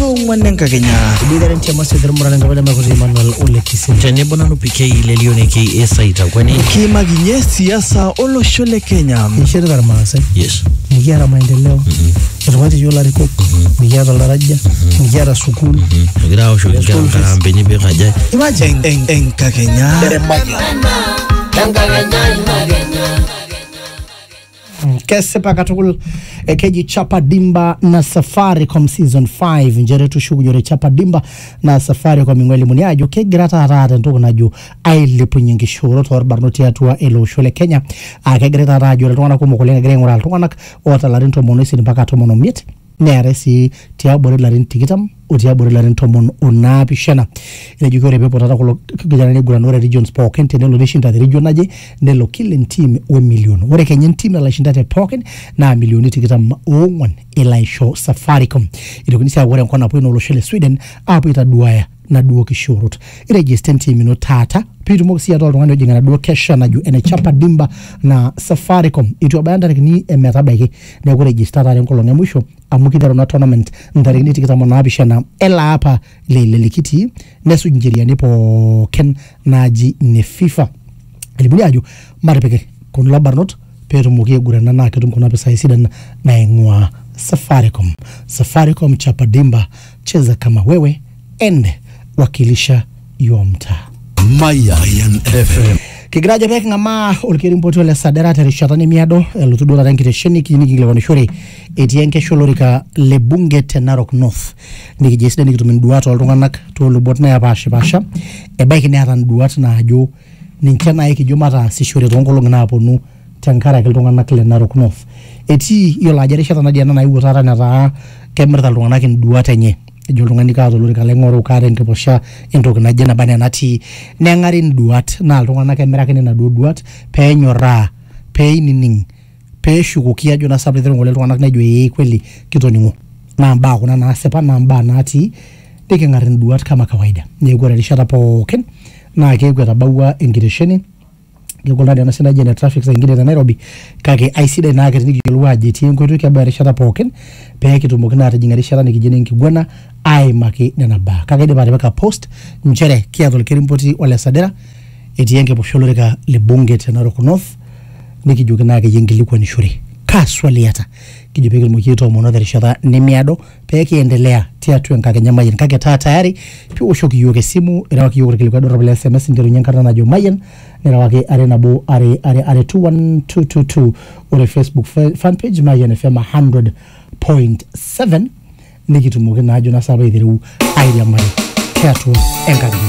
toong'uan enkakenya Iboitare ntiama sii ilmurana enkabila Makuti Emmanuel Ole Kisin. tenebo nanu PK lelioneki esaita kwani kiimakinye siasa olosho le kenya Eishirita Irmaasai. yes Mikiata maendeleo. Etung'uatie iyiook ilarikok. Mikiata oltaraja. Mikiata sukuul. egira aoshoki nkera School fees. nkaraambeni pikaja Imagine. En- en- enkakenya Enkakenya ina kenya. kesipa katukul eh, keji chapa dimba na safaricom season 5 njere tushukunyore chapa dimba na safaricom ing'olimu ajo kegira taata aata entoki najo ailepunye nkishoorot orbarnot tiatua ele osho le kenya aa kegira taata ajo iltung'anak kumok oleng egira aing'uraa iltung'anak oota larin tomon oisiet mpaka tomon omiet neetae sii tiabori ilarin tikitam o tiabori ilarin tomon o naapishana etejoki ore peipotata kulo kijanani aiguran ore regions pookin tenelo nishinda te region naje nelo kila entim we milion ore kenya entim nalo aishinda te pookin naa milioni tikitam oong'wan elo aisho safaricom itokini sii aaku ore enkop napuoi naa olosho le sweden aapuo aitaduaya naduo kishorot irejista entim ino taata piitumoki sii ataa oltung'ani ojing enaduo kesha najo ene chapa dimba na safaricom itu ebaya ntarikini emetabaiki neeku irejista taata enkolong e musho amu kiteru ina tournament ntarikini tikitam onaapishana ele apa le ile likitii nesuj incheriani pookin naaji ne fifa elimuni ajo matipik kulo barnot peetumoki aigurana naa ketum kuna pisai sidan naing'ua safaricom safaricom chapadimba cheza kama wewe and wakilisha your mtaa Mayan FM. kigiraja pek ng'amaa olkerin potio le sadera terishata nemiado elotu duo taata enkitesheni kiyieu nikikilikuanishore etii enkesha olorika le bunge te narok north nikijo esidai nikitum induat oltung'anak toolubot neepaashipaasha ebaiki neeta induat naajo ninche naai kijo mataasishore toonkolong'i naaponu tenkaraki iltung'anak le Narok North etii yiolo ajo erishata naje ena naewuo taata netaa kemirta iltung'anak induat enye ejo oltung'ani kaata olorika laing'oru kaata enkiposha entoki naje naba enaa enatii neng'ari induat naa iltung'anak emirakini inaduo duat penyorraa peinining peshukoki ajo naa sinanu piilo aitereu ng'ole iltung'anak nejo ee kweli kitoning'o naa imbaa kuna nasipa naa imbaa natii niking'arr induat kama kawaida neeku ore erishata pookin naa keeku etabawua enkitesheni. kegol naa ena siai naji ene traffic saa ingine te Nairobi kake aisidai naa ake tenikiyiolou aajo etii enkoitoi kebaa erishata pookin pee kitumoki naa atijing erishata nikijo ene nkiguana aimaki nena baa kake aidim atipika post nchere kiata olkerimpoti ole Sadera etii enkiposha olorika le bunge te Narok North nikijoki naa akeyie inkilikuanishore kaa swali iyata kijo pee kitumoki aitoomono terishata nemiado pee kiendelea tiatua enkakenya emayian kake taa tayari piwoshoki iyiook esimu irewaki iyiook orkilikuai dorrop le sms interunyie enkarna najo mayian nirewaki are nabo are are are 21222 ore facebook fa- fan page mayian fm 100.7 nikitumoki naa ajo nasa apa aitereu airiamari tiatua enkakenya